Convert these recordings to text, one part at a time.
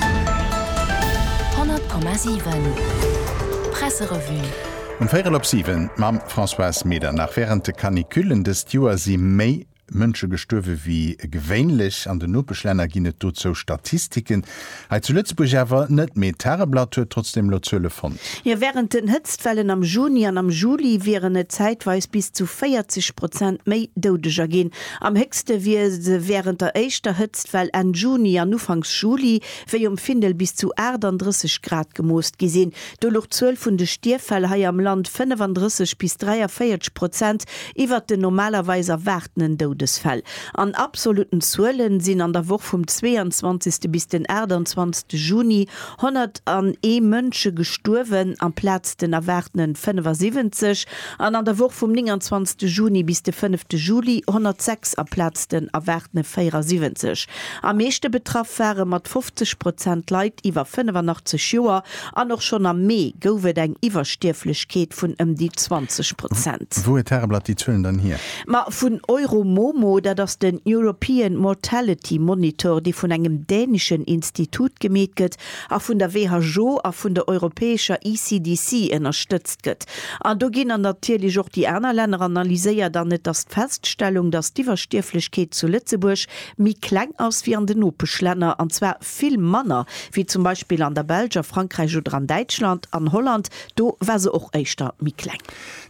100,7 Presserevue Um véierel op siwen mam Françoise Medernach. Wärend de Canicullen dëst Joer si méi Mënsche gestuerwe wéi gewéinlech. An den Nopeschlänner ginn et dozou Statistiken, hei zu Lëtzebuerg awer net. Mee d'Tageblatt huet trotzdeem elo Zuele fonnt. Jo, wärend den Hëtztwellen am Juni an am Juli wieren et zäitweis bis zu 40 Prozent méi Doudeger ginn. Am héchste wier se wärend der éischter Hëtztwell Enn Juni an Ufanks Juli, wéi um Findel bis zu 38 Grad gemooss gi sinn. Do luch d'Zuel vun de Stierffäll hei am Land 35 bis 43 Prozent iwwert den normalerweis erwaartenen Doudesfäll. An absolutten Zuele sinn an der Woch vum 22. bis den 28. Juni 101 Mënsche gestuerwen amplaz den erwaartenen 75. An an der Woch vum 29 Juni bis de 5 Juli 106 aplaz den erwaartene 74. Am meeschte betraff ware mat 50 Prozent Leit iwwer 85 Joer an och schonn am Mee gouf et eng Iwwerstierflechkeet vun ëm déi 20 Prozent. Wou huet d'Tageblatt déi Zuelen dann hier? Ma vun Euromomo, dat ass den European Mortality Monitor, dee vun engem dänischen Institut gemeet gëtt, a vun der WHO a vun der europäescher ECDC ënnerstëtzt gëtt. An do ginn dann natierlech och déi aner Länner analyséiert an et ass d'Feststellung, dass d'Iwwerstierflechkeet zu Lëtzebuerg méi kleng ass wéi an den Nopeschlänner, an zwar vill manner wéi zum Beispill an der Belsch, a Frankräich oder an Däitschland. An Holland, do war se och éischter méi kleng.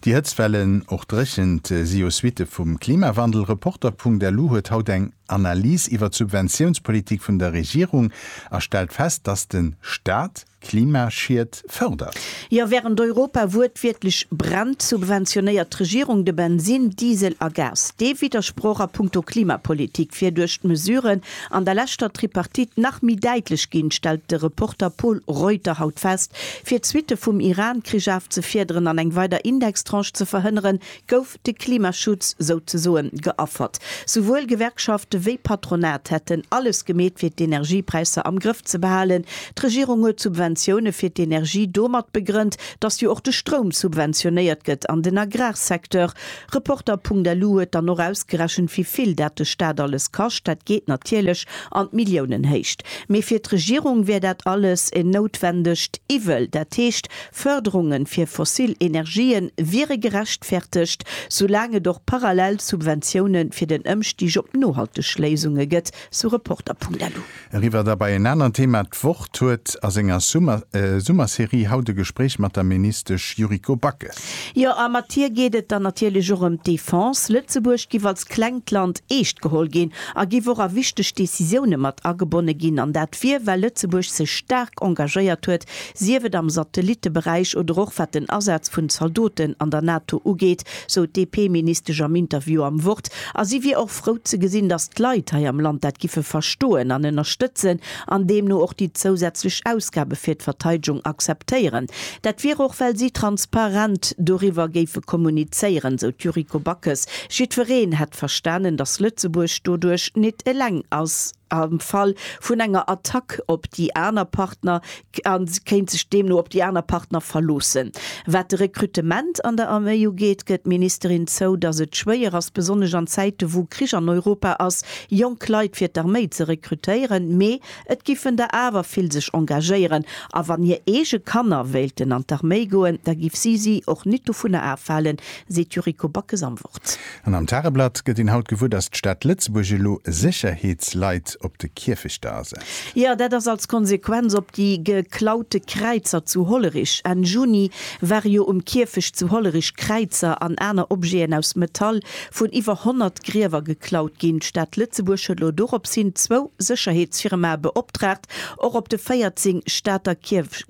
Déi Hëtztwellen, och Dréchent, si jo Suitte vum Klimawandel. Reporter.lu huet haut eng. Analys iwwer d'Subventiounspolitik vun der Regierung a stellt fest, dass de Staat Klimaschied fërdert. Jo, während Europa wuertwiertlech brennt, subventionéiert d'Regierung de Bensin, Diesel a Gas. Dee Widdersproch a punkto Klimapolitik wier duerch d'Mesuren an der leschter Tripartite nach méi däitlech ginn, stellt de Reporter Pol Reuter haut fest. Fir d'Suitte vum Iran-Krich afzefiederen an eng weider Indextranche ze verhënneren, gouf. de Klimaschutz souzesoen geaffert. Souwuel Gewerkschafte wéi Patronat hätten alles gemeet fir d'Energiepräisser am Grëff ze behalen. D'Regierung huet d'Subventioune fir d'Energie domat begrënnt, datt jo och de Stroum subventionéiert gëtt an den Agrarsecteur. Reporter.lu huet dann och ausgerechent wéi vill dat de Staat alles kascht. Dat geet natierlech an d'Milliounenhéicht. Mee fir d'Regierung wär dat alles en noutwendegt Iwwel. Dat heescht Fërderunge fir fossil Energië wiere gerechtfertegt, soulaang et och parallel Subventioune fir den Ëmstig op nohalteg Léisunge gëtt, sou Reporter.lu. Eriwwer da bei en anert Theema, D'Wort huet a senger Summerserie haut e Gespréich mat der Ministesch Yuriko Backes. Jo, a mat hir geet et dann natierlech och ëm d'Defense. Lëtzebuerg giff als klengt Land eescht geholl ginn a giff och a wichteg Decisioune mat agebonne ginn. An dat wier, well Lëtzebuerg sech staark engagéiert huet Sief et am Satellitteberäich oder och wat den Asaz vun Zaldoten an der NATO ugeet, sou d'DP-Ministesch am Interview am Wort. A si wier och frou ze gesinn, datt d'Leit hei am Land dat giffe verstoen an ënnerstëtzen an deemno och déi zousätzlech Ausgabe fir d'Verteidegung akzeptéieren. Dat wier och well si transparent doriwwer géife kommunizéieren, sou d'Yuriko Backes. Jiddwereen hätt verstanen, datt Lëtzebuerg doduerch nit eleng ass. Am Fall vun enger Attack op déi aner Partner a se kéint sech deemno op déi aner Partner verloossen. Wat de Rekrutement an der Arméi ugeet, gëtt d'Ministerin zou, datt et schwéier ass, besonnesch an Zäite wou Krich an Europa ass, jonk Leit fir d'Arméi ze rekrutéieren. Mee et giffen der awer vill sech engagéieren. A wann hir eege Kanner wéilten an d'Arméi goen, da giff si si och nit dovunner afhalen, seet d'Yuriko Backes am Wort. An am Tageblatt gëtt een haut gewuer, datt d'Stad Lëtzebuerg elo Sécherheetsleit op de Kierfechter asetzt. Jo, dat ass als Konsequenz op déi geklaute Kräizer zu Hollerich. Enn Juni ware jo um Kierfecht zu Hollerich Kräizer an aner Objeten aus Metall vun iwwer 100 Griewer geklaut ginn. D'Stad Lëtzebuerg huet elo doropshin zwou Sécherheetsfirmae beoptragt, Och op de 14 Stater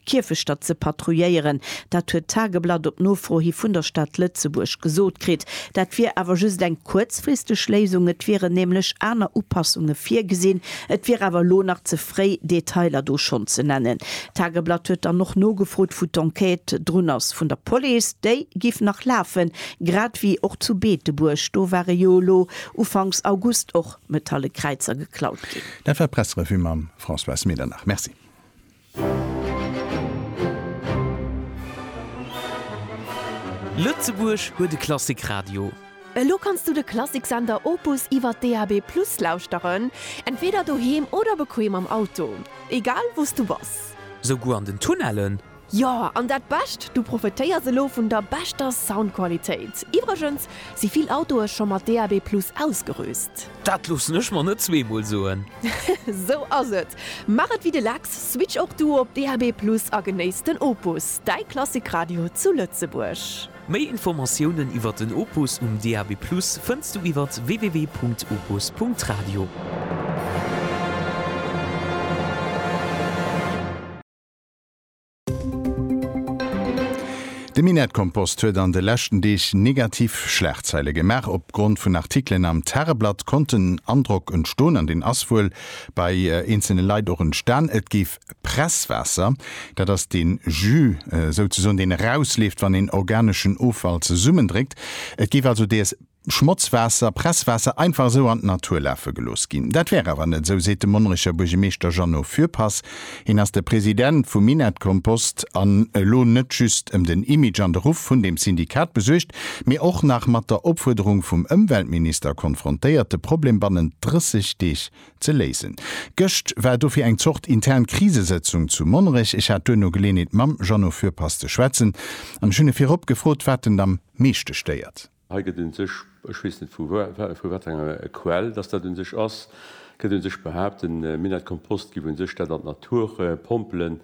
Kierfechter ze patrouilléieren, dat huet d'Tageblatt op Nofro hi vun der Stad Lëtzebuerg gesot kritt. Dat wier awer just eng kuerzfristeg Léisung, et wieren nämlech aner Upassunge virgesinn. Et wier awer elo nach ze fréi, Detailer do schonn ze nennen. D'Tageblatt huet dann och nogefrot, wou d'Enquête drun ass vun der Police. Déi géif nach lafen, grad ewéi och zu Beetebuerg. Do ware jo elo ufanks August och metalle Kräizer geklaut ginn. Dat war d'Pressrevue mam Françoise Medernach. Merci. Lëtzebuerg huet e Klassikradio. Elo kanns du de Klassiksender Opus iwwer DAB+ lauschteren, entweeder doheem oder bequeem am Auto. Egal wou s du bass. Souguer an den Tunnellen? Jo, an dat Bescht, du profetéiers elo vun der beschter Soundqualitéit. Iwwregens si vill Autoe scho mat DAB+ ausgerüst. Dat loossen ech mer net zweemol soen. Sou ass et. Maach et wéi de Lex, switch och du op DAB+ a genéiss den Opus, däi Klassikradio zu Lëtzebuerg. Méi Informatiounen iwwert den Opus um DAB+ fënns du iwwer www.opus.radio. Den Minettkompost huet an de leschten Deeg negativ Schlagzeile gemaach. Op Grond vun Artikelen am Tageblatt konnt den Androck entstoen, an deen ass wuel bei eenzelne Leit och entstan, et géif Presswaasser, dat ass dee Jus souzesoen, deen erausleeft, wann een organeschen Offall zesummendréckt, et géif also dees. Schmotzwaasser, Presswaasser einfach esou an d'Natur lafe gelooss ginn. Dat wär awer net esou, seet de Monnerecher Buergermeeschter Jeannot Fürpass. Hien ass de President vu Minett-Kompost an elo net just ëm den Image an de Ruff vun deem Syndikat besuergt, mee och nach mat der Opfuerderung vum Ëmweltminister konfrontéiert, de Problem bannent 30 Deeg ze léisen. Gëscht war dofir eng Zort intern Krisesëtzung zu Monnerech. Ech hat duerno Geleeënheet mam Jeannot Fürpass ze schwätzen an ech hunn e virop gefrot, wat en am meeschte stéiert. Hei gëtt un sech, ech weess net vu wat enger Quell dass dat un sech ass, gëtt un sech behaapt, de Minett Kompost giff un sech dat an d'Natur pompelen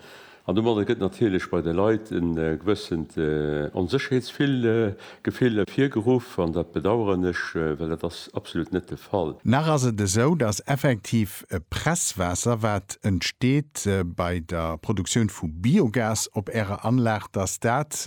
an domadder gëtt natierlech bei de Leit en gewëssent Onsécherheetsgefill ervirgeruff an dat bedaueren ech, well dat ass absolut net de Fall. Nach ass et esou, dass effektiv Presswaasser wat entsteet bei der Produktioun vu Biogas op Ärer Anlag, dass dat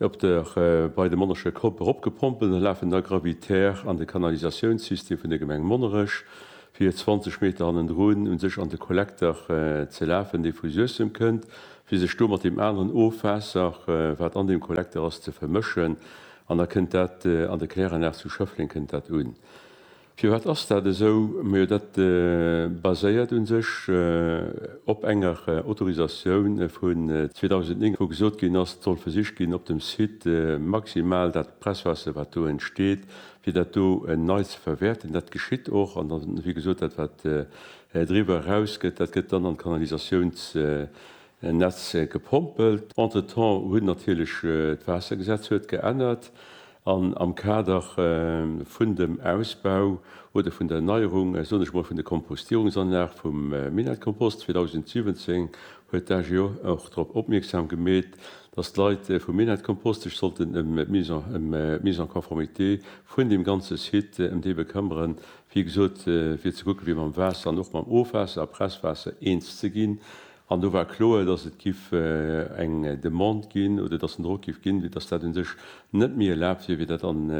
Op der bei de Monnerscher Kopp eropgepompelt lafen da gravitär an de Kanalisatiounssystem vun der Gemeng Monnerech, fir 20 Meter hannendrun u sech an de Kollekter ze lafen, dee vu Suessem kënnt, fir sech do mat deem aneren Ofwaasser, wat an deem Kollekter ass, ze vermëschen. An da kënnt dat an der Kläranlag zu Schëffleng kënnt dat un. Firwat ass dat esou? Majo dat baséiert u sech op enger Autorisatioun vun 2009, wou gesot ginn ass, et soll versicht ginn op dem Site maximal dat Presswaasser wat do entsteet, fir dat do nei ze verwäerten. Dat geschitt och an dann, wéi gesot, dat wat driwwer eraus gëtt, dat gëtt dann an d'Kanalisatiounsnetz gepompelt. Entretemps huet natierlech d'Waassergesetz huet geännert. An am Kader vun dem Ausbau oder vun der Erneierung, soen ech emol, vun der Kompostierungsanlag vum Minettskompost 2017 huet d'AGO och drop opmierksam gemeet, dass d'Leit vum Minettskompost sech sollten ëm d'Mise en conformité vun deem ganze Site, ëm déi bekëmmeren, wéi gesot, fir ze kucken, fir mam Waasser an och mam Ofwaasser a Presswaasser eens ze ginn. An do war kloer, dass et giff eng Demande ginn oder dass en Drock giff ginn, wéi dass dat un sech net méi erlaabt wier, wéi dat an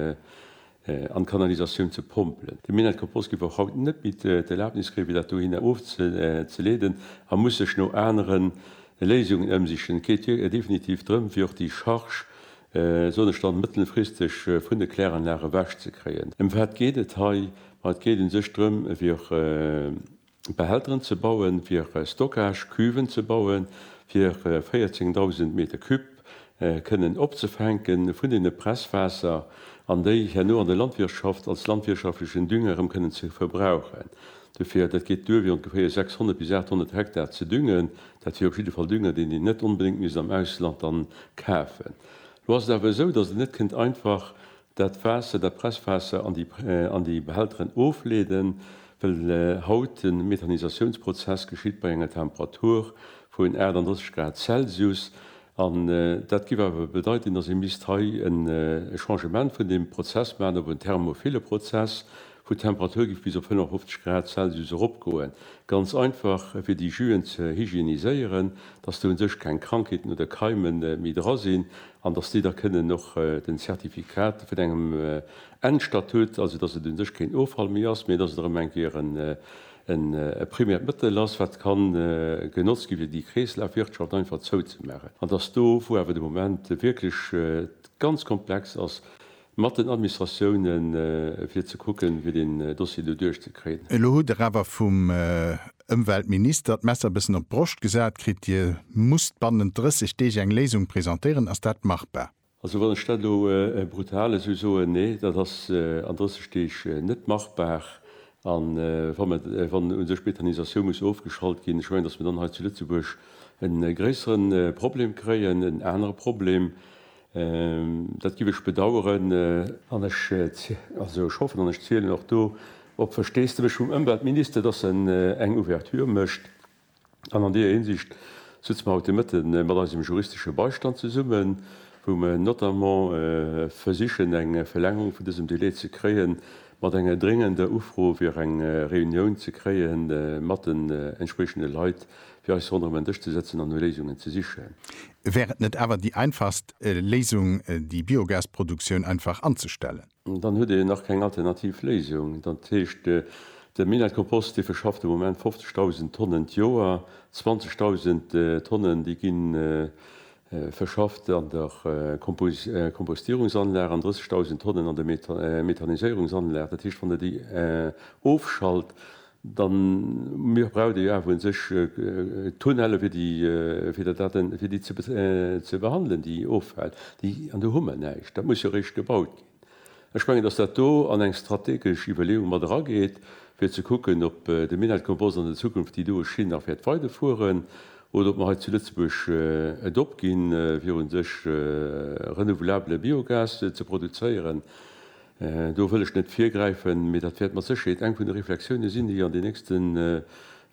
d'Kanalisatioun ze pompelen. De Minett Compost giff och haut net méi d'Erlaabnis kréien, fir dat dohinner ofzeleeden a muss sech no anere Léisungen ëmsichen. Et geet definitiv drëm, fir och déi Charge, soen ech dann, mëttelfristeg vun de Kläranlage ewech ze kréien. Ëm wat geet et hei? Ma et geet un sech drëm, fir Behälteren ze bauen, fir Stockage-Cuven ze bauen, fir 14.000 Meter Cube kënnen opzefänke vun deene Presswaasser an déi herno an der Landwirtschaft als landwirtschaftlechen Dünger erëm kënnen ze verbrauchen. Dofir, dat geet duer, fir ongeféier 600 bis 800 Hektar ze düngen. Dat wier op jidde Fall Dünger, deen een net onbedéngt misst am Ausland dann kafen. Elo ass et awer esou, datt et net kënnt einfach Dat Waasser, dat Presswaasser an déi Behälteren ofleeden, well haut de Methanisatiounsprozess geschitt bei enger Temperatur vun 38 Grad Celsius. An dat géif awer bedeiten, datt ee misst hei e Changement vun deem Prozess maachen op en thermophile Prozess, wou d'Temperatur géif bis op 55 Grad Celsius eropgoen. Ganz einfach, fir déi Juen ze hygieniséieren, datt do u sech keng Krankheeten oder Keime méi dra sinn, an dass déi da kënnen och den Zertifikat vun engem Endstatut, also dass et u sech keen Offall méi ass, mee dass et erëm eng Kéier e primäert Mëttel ass, wat ka genotzt gi fir déi Kreeslafwirtschaft einfach zouzemaachen, an dass do, wou awer de Moment wierklech ganz komplex ass, Mat den Administratiounen, fir ze kucken, fir deen Dossier do duerchzekriegen. Elo hutt Der awer vum Ëmweltminister d'Messer e bëssen op d'Broscht gesat kritt. Dir musst bannent 30 Deeg eng Léisung presentéieren. Ass dat machbar? Also, wann ech dat elo brutal esou soen, Nee, dat ass an 30 Deeg net machbar. A wa mer, wann u sech d'Methanisatioun muss ofgeschalt ginn, ech mengen, datt mer dann hei zu Lëtzebuerg e gréissere Problem kréien, en anere Problem. Dat giff ech bedaueren an ech hoffen an ech zielen och do op Versteesdemech vum Ëmweltminister, dass en eng Ouverture mécht. An an deeër Hinsicht sëtze mer haut de Mëtte mat eisem juristesche Beistand zesummen, wou mer notamment versichen eng Verlängerung vun dësem Delai ze kréien, mat enger dréngender Ufro fir eng Reunioun ze kréie mat den entspriechende Leit fir eis ronderëm en Dësch ze sëtzen an no Léisungen ze sichen. Wär et net awer déi einfachst Léisung, déi Biogasproduktioun einfach anzestellen? Dann huet een nach keng alternativ Léisung. Dat heescht, de Minett-Kompost, dee verschafft de Moment 50.000 Tonnen d'Joer. 20.000 Tonnen, déi gi verschafft an der Kompostierungsanlag an 30.000 Tonnen an der Methaniséierungsanlag. Dat heescht, wann Der déi ofschalt, Dann, mir braucht ee jo awer un sech Tunnelle fir déi, fir der Daten, fir déi ze behandelen, déi offält, déi, an do hu mer näischt, dat muss jo eréischt gebaut ginn. Ech mengen, datt dat do an eng strategesch Iwwerleeung mat erageet, fir ze kucken, ob de Minett Compost an der Zukunft déi doe Schinn nach wäert weiderfueren oder ob mer hei zu Lëtzebuerg et opginn, fir un sech renouvelabbele Biogas ze produzéieren. Do wëll ech net virgräifen, mee dat wäert mat Sécherheet eng vun de Reflexiounen sinn, déi an den nächsten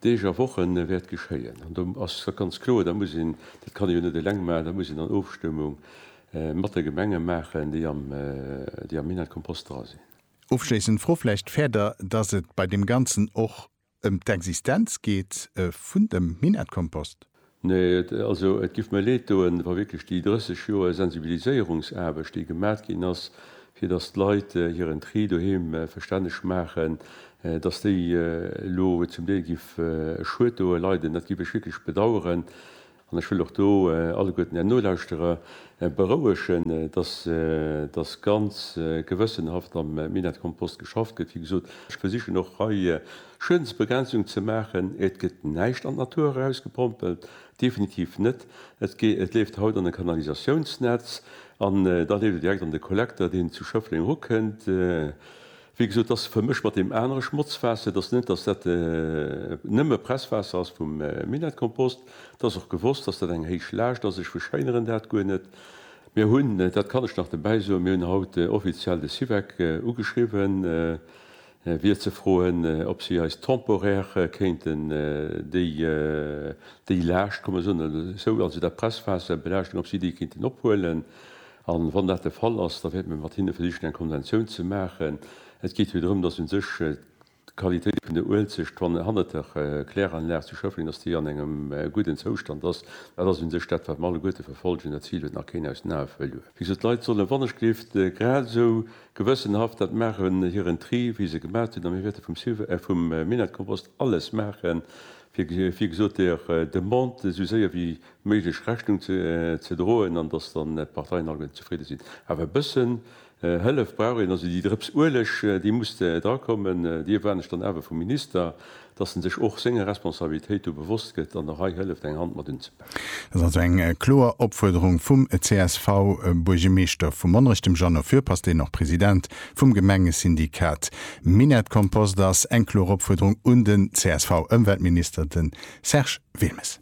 Deeg a Woche wäert geschéien. An do ass et ganz kloer, da muss een, dat kann ee jo net eleng maachen, da muss een an Ofstëmmung mat de Gemenge maachen, déi am Minett-Kompost dra sinn. Ofschléissend Fro vläicht, Fäert Der, dass et bei deem Ganzen och Ëm d'Existenz geet vun dem Minettkompost. Nee, also et giff mir leed doen, wa wierklech déi 30 Joer Sensibiliséierungsaarbecht, déi gemat ginn ass, fir dass d'Leit hiren Tri doheem verstänneg maachen, dass déi elo zum Deel giff e Schued doe leiden. Dat giff ech wierklech bedauern. An ech wëll och do alleguerten Är Nolauschterer berouegen, dass da ganz gewëssenhaft am Minettekompost geschafft gëtt. Wéi gesot, ech versichen och hei Schuedensbegrenzung ze maachen. Et gëtt näischt an d'Natur erausgepompelt, definitiv net. Et leeft haut an e Kanalisatiounsnetz an da leeft et direkt an de Kollekter, deen zu Schëffleng erukënnt. Wéi gesot, et ass vermëscht mat deem anere Schmotzwaasser. Et ass net, datt dat nëmme Presswaasser ass vum Minettskompost. Et ass och gewosst, datt dat eng héich Laascht ass. Ech verschéineren dat guer net. Mir hunn, dat kann ech nach dobäi soen, mir hunn haut offiziell de Syvec ugeschriwwen, fir ze froen, ob si eis temporaire kéinten déi Laascht, kann mer soen, also dat Presswaasser, Belaaschtung, ob si déi kéinten ophuelen. A wann dat de Fall ass, da wäerte mir mat hinne versichen, eng Konventioun ze maachen. Et geet jo drëm, dass u sech d'Qualitéit vun der Uelzecht, wann hannert der Kläranlag zu Schëffleng, dass déi an engem gudden Zoustand ass. Dat ass u sech dat, wat mer alleguerte verfollegen. Dat Zil huet nach keen aus den Ae verluer. Wéi gesot, d'Leit sollen wannechgelift grad esou gewëssenhaft dat maachen, hiren Tri, wéi se gemaach hunn. A mir wäerte vum Civ, vum Minett-Kompost alles maachen, fir, wéi gesot, der Demande esou séier wéi méiglech Rechnung ze droen an datt dann d'Parteien allgemeng zefridde sinn. Awer e bëssen Hëllef brauch een. Also déi Drëps Ueleg, déi muss drakommen. Déi erwaarden ech dann awer vum Minister, datt en sech och senger Responsabilitéit do bewosst gëtt an och hei hëlleft eng Hand mat unzepaken. Dat ass also eng kloer Opfuerderung vum CSV-Buergermeeschter vu Monnerech, dem Jeannot Fürpass, deen och President vum Gemengesyndikat Minett-Kompost ass. Eng kloer Opfuerderung un den CSV-Ëmweltminister, de Serge Wilmes.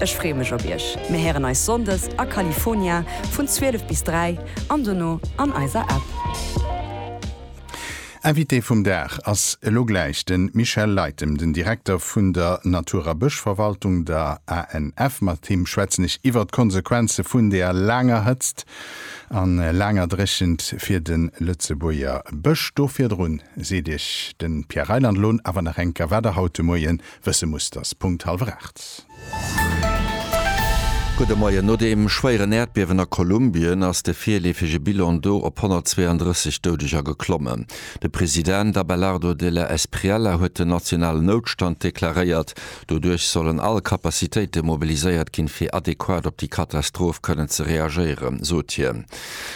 Ech free mech op iech. Mir héieren eis Sonndes a California vun 12 bis 3 an dono an eiser App. Invité vum Dag ass elo gläich de Michel Leytem, den Direkter vun der Natur a Bëschverwaltung, der ANF. Mat him schwätzen ech iwwer d'Konsequenze vun der laanger Hëtzt a laanger Dréchent fir de Lëtzebuerger Bësch. Do virdrun seet iech de Pierre Reyland Lohn awer nach enker, wat der haut de Moien wësse muss, dass Punkt hallwer 8. Gudde Moien. No deem schwéieren Äerdbiewen a Kolumbien ass de virleefege Bilan do op 132 Doudeger geklommen. De President Abelardo de la Espriella huet den nationalen Noutstand deklaréiert. Doduerch sollen all Capacitéite mobiliséiert ginn, fir adequat op déi Katastroph kënnen ze reagéieren, sot hien.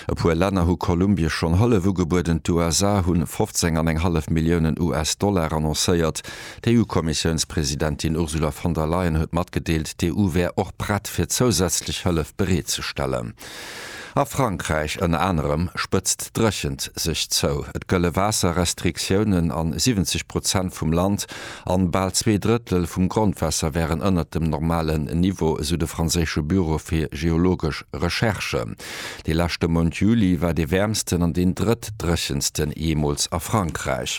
E puer Länner hu Kolumbie schonn Hëllef ugebueden. D'USA hu 15 an eng hallef Milliounen US-Dollar annoncéiert, D'EU-Kommissiounspresidentin Ursula von der Leyen huet matgedeelt, d'EU wär och prett fir zousätzlech Hëllef bereet ze stellen. A Frankräich ënner anerem spëtzt d'Dréchent sech zou. Et gëlle Waasserrestriktiounen a 70 Prozent vum Land an bal zwee Drëttel vum Grondwaasser wären ënnert dem normalen Niveau, esou de franséische Büro fir geologesch Recherche. De leschte Mount Juli war dee wäermsten an deen drëttdréchensten jeemools a Frankräich.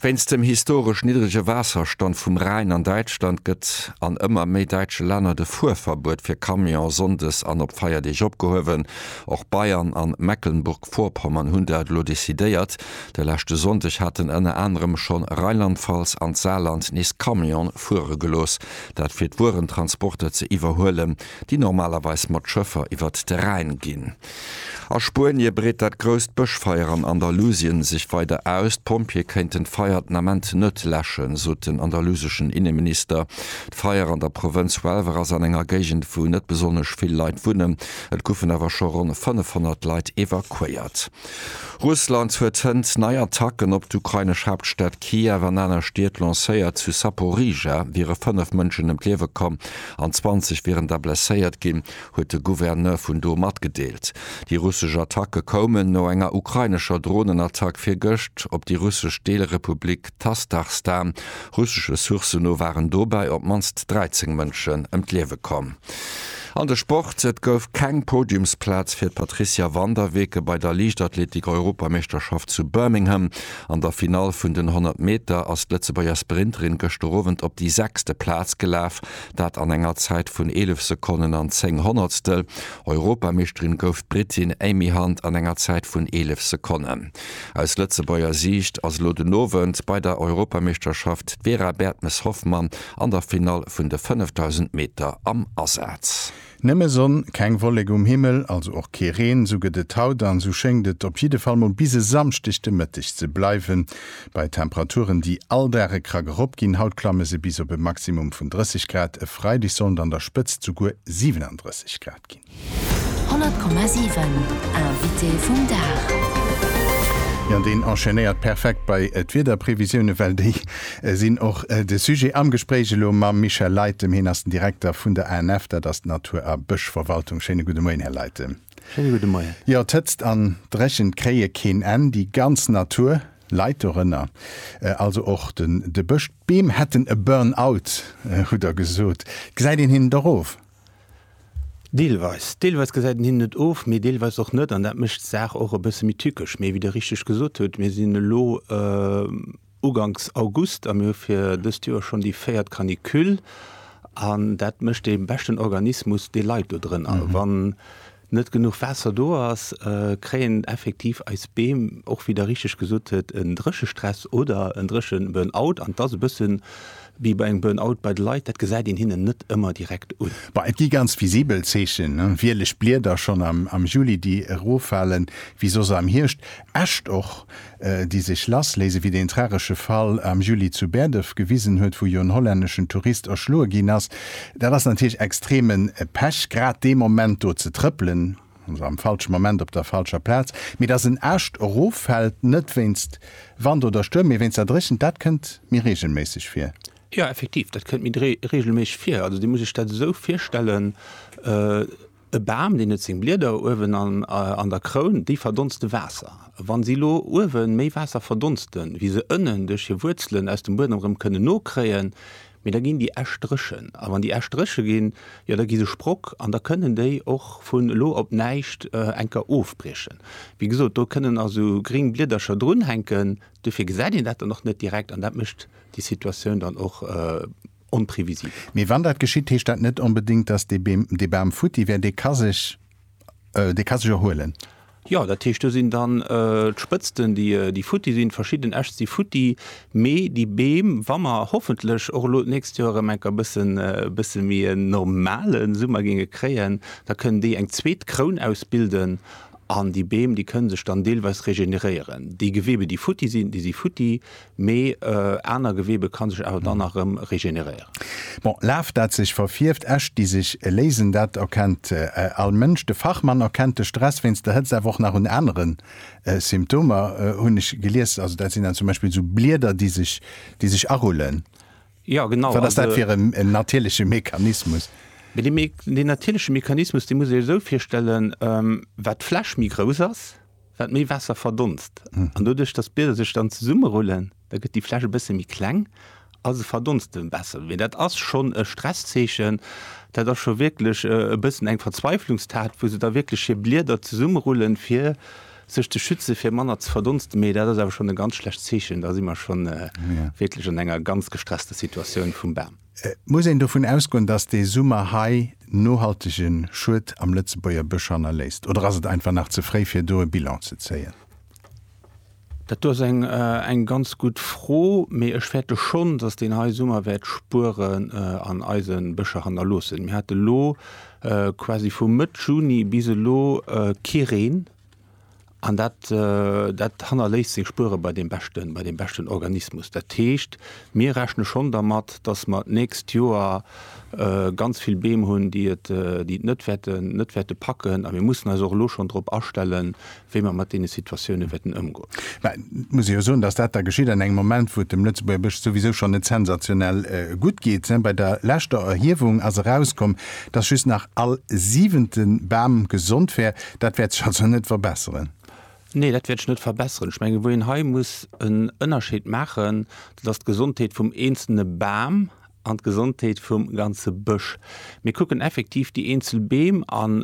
Wéinst dem historesch niddrege Waasserstand vum Rhäin an Däitschland gëtt an ëmmer méi däitsche Länner de Fuerverbuet fir Camionen sonndes an op Feierdeeg opgehuewen. Och Bayern an Mecklenburg-Vorpommern hunn dat elo decidéiert. De leschte Sonndeg haten ënner anerem schonn Rheinland-Pfalz an d'Saarland nees Camionen fuere gelooss, dat fir d'Wuerentransporter ze iwwerhuelen, déi normalerweis mat Schëffer iwwert de Rhäin ginn. A Spuenie breet dat grousst Bëschfeier an Andalusien sech weider aus. D'Pompjeeë kéinten d'Feier den Ament net läschen, sot den andaluseschen Inneminister. D'Feier an der Provënz Huelva ass an enger Géigend, wou net besonnesch vill Leit wunnen. Et goufen awer scho ronn 500 Leit evakuéiert. Russland huet hënt nei Attacken op d'ukrainesch Haaptstad Kiew an aner Stied lancéiert. Zu Saporizhzhia wiere 5 Mënschen ëm d'Liewe komm an 20 wieren da blesséiert ginn. huet de Gouverneur vun do matgedeelt. Déi russesch Attacke koumen no enger ukrainescher Dronenattack virgëscht op déi russesch Deelrepublik Tastachstan. Russesche Sourcen no waren dobäi op d'mannst 13 Mënschen ëm d'Liewe komm. An de Sport, Et gouf keng Podiumsplaz fir d'Patricia van der Weken bei der Liichtathletik-Europameeschterschaft zu Birmingham. An der Finall vun den 100 Meter ass d'Lëtzebuerger Sprinterin gëschter Owend op déi sechste Plaz gelaf. Dat an enger Zäit vun 11 Sekonnen an 10 Honnertstel. Europameeschterin gouf d'Brittin Amy Hunt an enger Zäit vun 11 Sekonnen. Aus Lëtzebuerger Siicht ass elo den Owend bei der Europameeschterschaft d'Vera Bertmes-Hoffmann an der Finall vun de 5000 Meter am Asaz. Nëmme Sonn, keng Wollek um Himmel, also och kee Reen, sou gëtt et haut an sou schéngt et op jidde Fall mol bis e Samschdeg de Mëtteg ze bleiwen, bei Temperaturen déi all Dag e Krack erop ginn. Haut klamme se bis op e Maximum vun 30 Grad, e Freideg sollen an der Spëtzt souguer 37 Grad ginn. 100,7 Invité vum Dag. Jo, deen enchaînéiert perfekt bei d'Wiederprevisioune well déi. Et sinn och de Sujet am Gespréich elo mam Michel Leytem. Hien ass den Direkter vun der ANF, dat ass d'Natur a Bëschverwaltung. Schéine gudde Moien, Här Leytem. Schéine gudde Moien. Jo, d'Hëtzt an d'Dréchent kréie keen Enn. Déi ganz Natur leit dorënner, also och de Bësch. D'Beem hätten e Burn-out, hutt Der gesot. Gesäit een hinnen dach of? Deelweis. Deelweis gesäit een hinnen et of, mee deelweis och net. An dat mécht d'Saach och e bësse méi tückesch. Mee wéi Der richteg gesot hutt, mir sinn elo, uganks August a mir hu fir dëst Joer schonn déi véiert Canicule an dat mécht dee beschten Organismus, dee leit do drënner. A wann net genuch Waasser do ass, kréien effektiv eis Beem, och wéi Der richteg gesot hutt, en Dréchestress oder en Drécheburnout an et ass e bësse wéi bei engem Burnout bei de Leit, dat gesäit een hinnen net ëmmer direkt un. Bah, et gi ganz visibel Zeechen, wieleg Blieder schonn am Juli, déi eroffalen, wéi soss am Hierscht, Äscht och, déi sech lass léisen, wéi deen tragesche Fall am Juli zu Berdëf gewisen huet, wou jo en hollänneschen Tourist erschloe ginn ass. Dat ass natierlech extreme Pech, grad dee Moment do ze trëppelen, also am falsche Moment op der falscher Plaz. Mee dass en Äscht eroffält, net wéinst Wand oder Stuerm, mee wéinst der Dréchent, dat kënnt méi reegelméisseg vir. Jo, effektiv, dat kënnt méi reegelméisseg vir. Also Dir musst Iech dat esou virstellen, E Bam, deen huet seng Blieder uewen an der Kroun, déi verdonste Waasser. Wa si elo uewe méi Waasser verdonsten, wéi se ënnen duerch hir Wuerzelen aus dem Buedem erëm kënnen nokréien, mee da ginn déi Äscht dréchen. A wann déi Äscht dréche ginn, jo da gi se Sprock an da kënnen déi och vun elo op näischt eng Kéier ofbriechen. Wéi gesot, do kënnen a sou gring Bliedercher drunhänken, duerfir gesäit een dat dann och net direkt an dat mécht déi Situatioun dann och, onprevisibel. Mee wann dat geschitt, heescht dat net onbedéngt, dass dee Beem, dee Bam futti wär, dee ka sech, dee ka sech erhuelen. Jo, dat heescht, do sinn dann d'Spëtzten, déi, déi futti sinn, verschidden Äscht si futti, mee déi Beem, wa mer hoffentlech och elo d'nächst Joer erëm enker e bëssen, e bësse méi en normale Summer géinge kréien, da kënnen déi eng zweet Kroun ausbilden an déi Beem, déi kënne sech dann deelweis regeneréieren. Déi Gewebe, déi futti sinn, déi si futti, mee aner Gewebe kann sech awer dann nach erëm regeneréieren. Bon, Laf dat sech verfierft, Äscht déi sech léisen, dat erkennt all Mënsch. De Fachmann erkennt de Stress wéinst der Hëtzt awer och nach un anere Symptomer, hunn ech gelies. Also dat sinn dann zum Beispill esou Blieder déi sech déi sech arullen. Jo genau. Wat ass dat fir en natierleche Mechanismus? Mee deen natierleche Mechanismus dee muss ee sech esou virstellen, Wat d'Fläch méi grouss ass, wat méi Waasser verdonst. An doduerch, dass d'Blieder sech dann zesummerullen, da gëtt déi Fläsch e bësse méi kleng a se verdonste besser. Mee dat ass schonn e Stresszeechen, dat ass scho wierklech e bëssen eng Verzweiflungstat, wou se da wierklech hir Blieder zesummerullen, fir sech ze schützen, fir manner ze verdonsten. Mee dat ass awer schonn e ganz schlecht Zeechen, da si mer schonn wierklech an enger ganz gestresster Situatioun vum Bam. Et muss een dovun ausgoen, dass dee Summer hei nohaltege Schued am Lëtzebuerger Bësch hannerléisst. Oder ass et einfach nach ze fréi, fir do e Bilan ze zéien? Dat do ass eng ganz gutt Fro, mee ech fäerte schonn, dass deen hei Summer wäert Spueren an eise Bëscher hannerloossen. Mir hate lo quasi vu Mëtt Juni bis elo kee Reen. An dat, dat hannerléisst seng Spuere bei deem beschten, bei deem beschten Organismus. Dat heescht, mir rechne schonn dermat, datt mer d'nächst Joer ganz vill Beem hunn, déi et, déi et net wäerten, net wäerte packen. A mir mussen eis och elo schonn drop astellen, wéi mer mat deene Situatioune wäerten ëmgoen. Mä et muss ee jo soen, datt dat da geschitt an engem Moment, wou et dem Lëtzebuerger Bësch souwisou schonn net sensationell gutt geet. Bei der leschter Erhiewung ass erauskomm, datt just nach all siwente Bam gesond wär. Dat wäert sech also net verbesseren? Nee, dat wäert sech net verbesseren. Ech mengen, wou een hei muss en Ënnerscheed maachen, dat ass d'Gesondheet vum eenzelne Bam an d'Gesondheet vum ganze Bësch. Mir kucken effektiv déi eenzel Beem an.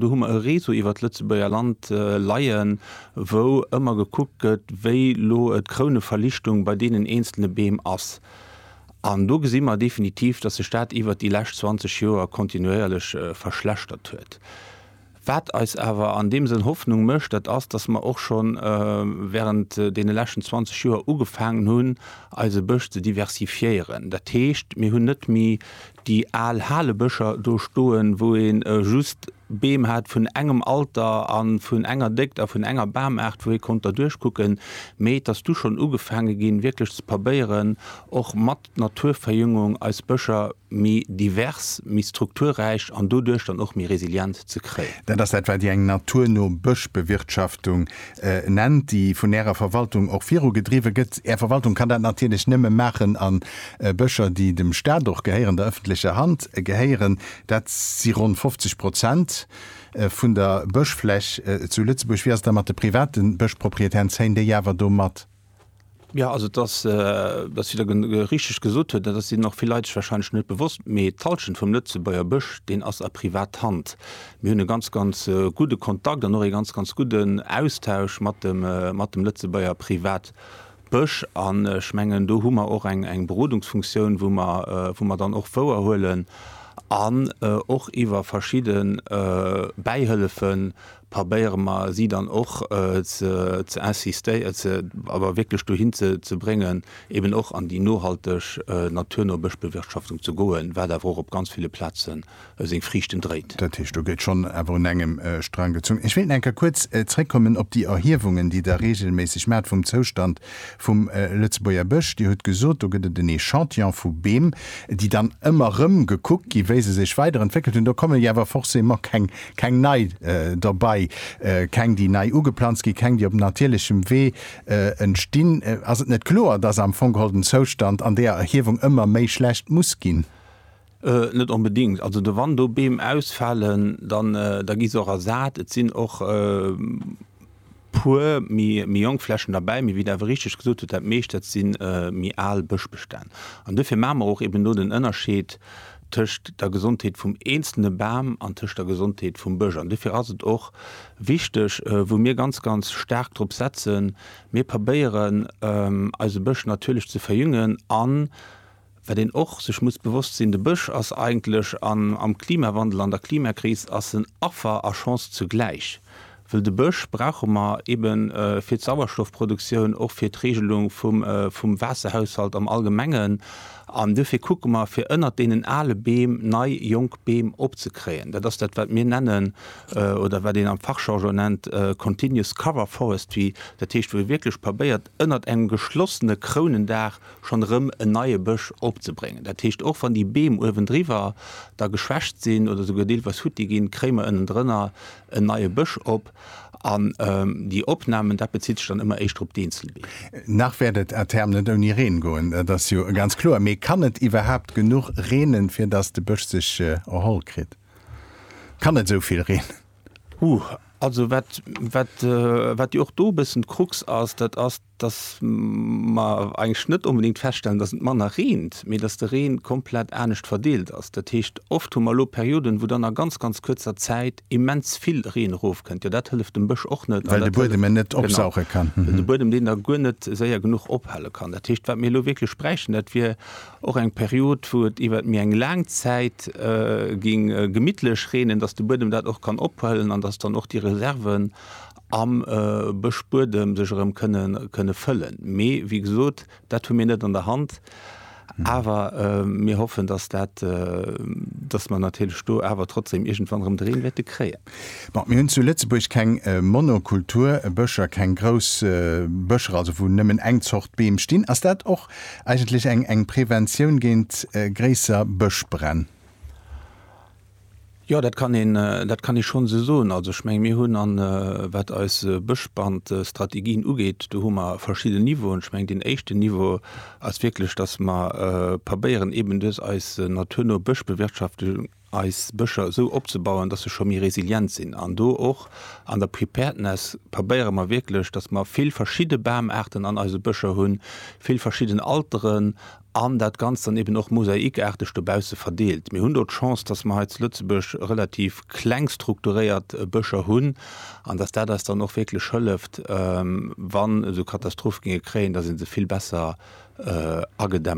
Do hu mer e Réseau iwwert d'Lëtzebuerger Land leien, wou ëmmer gekuckt gëtt, wéi elo d'Krouneverlichtung bei deenen eenzelne Beem ass. An do gesi mer definitiv, dass sech dat iwwert déi lescht 20 Joer kontinuéierlech verschlechtert huet. Wat eis awer an deem Sënn Hoffnung mécht, dat ass, dass mer och scho während deene leschten 20 Joer ugefaangen hunn, eise Bësch ze diversifiéieren. Dat heescht, mir hunn net méi déi al Halebëscher do stoen, wou ee just Beem hat vun engem Alter a vun enger Déckt a vun enger Bamaart, wou ee konnt derduerchkucken, mee et ass du schonn ugefaange ginn, wierklech ze pabéieren, och mat d'Naturverjüngung eis Bëscher méi divers, méi strukturräich an doduerch dann och méi resilient ze kréien. Dat ass dat, wat Dir eng naturno Bëschbewirtschaftung nennt, déi vun Ärer Verwaltung och virugedriwwe gëtt. Är Verwaltung kann dat natierlech nëmme maachen a Bëscher, déi dem Stat och gehéieren, der ëffentlecher Hand gehéieren, dat si ronn 50 Prozent vun der Bëschfläch zu Lëtzebuerg. Wéi ass et da mat de private Bëschproprietären? Zéien déi awer do mat? Ja, also et ass, dass si der richteg gesot huet, dat sinn och vill Leit sech wahrscheinlech net bewosst, mee d'Hallschent vum Lëtzebuerger Bësch, deen ass a Privathand. Mir hunn e ganz, ganz gudde Kontakt an och ee ganz, ganz gudden Austausch mat dem, mat dem Lëtzebuerger Privatbësch. An ech mengen, do hu mer och eng, eng Berodungsfunktioun, wou mer, wou mer dann och wouerhuelen an och iwwer verschidde Bäihëllefen, probéiere mer si dann och ze insistieren, ze, awer wierklech dohin ze bréngen, eben och an déi nohalteg, naturno Bëschbewirtschaftung ze goen, wat awer och op ganz ville Plaze seng Friichten dréit. Dat heescht, do gëtt schonn awer un engem Strang gezunn. Ech wéilt nach eng Kéier kuerz zréckkommen op déi Erhiewungen, déi Der reegelméisseg maacht vum Zoustand vum Lëtzebuerger Bësch. Dir hutt gesot, do gëtt et en Echantillon vu Beem, déi dann ëmmer erëm gekuckt ginn, wéi se sech weiderentwéckelt hunn. Do komme jo awer forcément keng Keng nei dobei, keng déi nei ugeplanzt ginn, keng déi op natierlechem Wee entstinn. Ass et net kloer, dass am Fong geholl den Zoustand an deeër Erhiewung ëmmer méi schlecht muss ginn? Net onbedingt. Also do wann do Beem ausfalen, dann da gi se och ersat. Et sinn och. puer méi jonk Flächen derbäi, mee wéi Der awer richteg gesot hutt, dat meescht dat si méi al Bëschbestänn. An duerfir maache mer och eben do den Ënnerscheed tëscht der Gesondheet vum eenzelne Bam an tëscht der Gesondheet vum Bësch. An duerfir ass et och wichteg, wou mir ganz, ganz staark drop setzen, Mir probéieren eise Bësch natierlech ze verjüngen an, Wat een och sech muss bewosst sinn, de Bësch ass eigentlech an am Klimawandel, an der Klimakris ass en Affer a Chance zugläich, wëll de Bësch brauche mer ebe fir d'Sauerstoffproduktioun, och fir d'Regelung vum Waasserhaushalt am Allgemengen. An duerfir kucke mer, fir ënnert deenen ale Beem nei, jonk Beem opzekréien. Dat ass dat, wat mir nennen, oder wat een am Fachjargon nennt, continuous cover forestry, dat heescht, wou ee wierklech probéiert, ënnert engem geschlossene Krounendaach schonn erëm en neie Bësch opzebréngen. Dat heescht, och wann déi Beem uewendriwwer da geschwächt sinn oder souguer deelweis futti ginn, kréie mer ënnendrënner en neie Bësch op. An déi Opnamen, dat bezitt sech dann ëmmer éischter op d'Eenzelbeem. Nach wäert et à terme net ouni Reen goen, dat ass jo ganz kloer. Mee kann et iwwerhaapt genuch reenen, fir datt de Bësch sech erholl kritt? Kann et esou vill reenen? Huh, also wat jo och do e bëssen d'Krux ass, dat ass, dass mer eigentlech net onbedéngt feststellen, dass et manner reent, mee dass de Reen komplett anescht verdeelt ass. Dat heescht, oft hu mer elo Perioden, wou dann a ganz, ganz kuerzer Zäit immens vill Reen erofkënnt. Jo, dat hëlleft dem Bësch och net. Well de Buedem en net opsauche kann. Genau. De Buedem, deen da guer net séier genuch ophale kann. Dat heescht, wat mir elo wierklech bräichten, dat wier och eng Period, wou et iwwert méi eng laang Zäit géing gemittlech reenen, dass de Buedem dat och kann ophuelen an dass dann och déi Reserven am Bëschbuedem sech erëm kënne fëllen. Mee wéi gesot, dat hu mir net an der Hand. Awer mir hoffen, dass dat, dass mer natierlech do awer trotzdeem iergendwann erëm de Reen wäerte kréien. Bon, mir hunn zu Lëtzebuerg keng Monokulturbëscher, keng grouss Bëscher, also wou nëmmen eng Zort Beem stinn. Ass dat och eigentlech eng Preventioun géint gréisser Bëschbränn? Jo, dat kann een, dat kann ee schonns esou soen. Also, ech mengen, mir hunn, a wat eis Bëschbrandstrategien ugeet, do hu mer verschidden Niveauen. Ech mengen, deen éischten Niveau ass wierklech, dass mer probéieren, eeben duerch eis naturno Bëschbewirtschaftung eis Bëscher esou opzebauen, dass se scho méi resilient sinn. An do och an der Preparedness probéiere mer wierklech, dass mer vill verschidde Bamaarten an eise Bëscher hunn, vill verschidden Alteren, An dat Ganzt dann eben och mosaikaarteg dobausse verdeelt. Mir hunn do d'Chance, dass mer hei zu Lëtzebuerg relativ kleng strukturéiert Bëscher hunn an dass dat eis dann och wierklech hëlleft, wann esou Katastrophe géinge kréien, dass ee se vill besser agedämmt.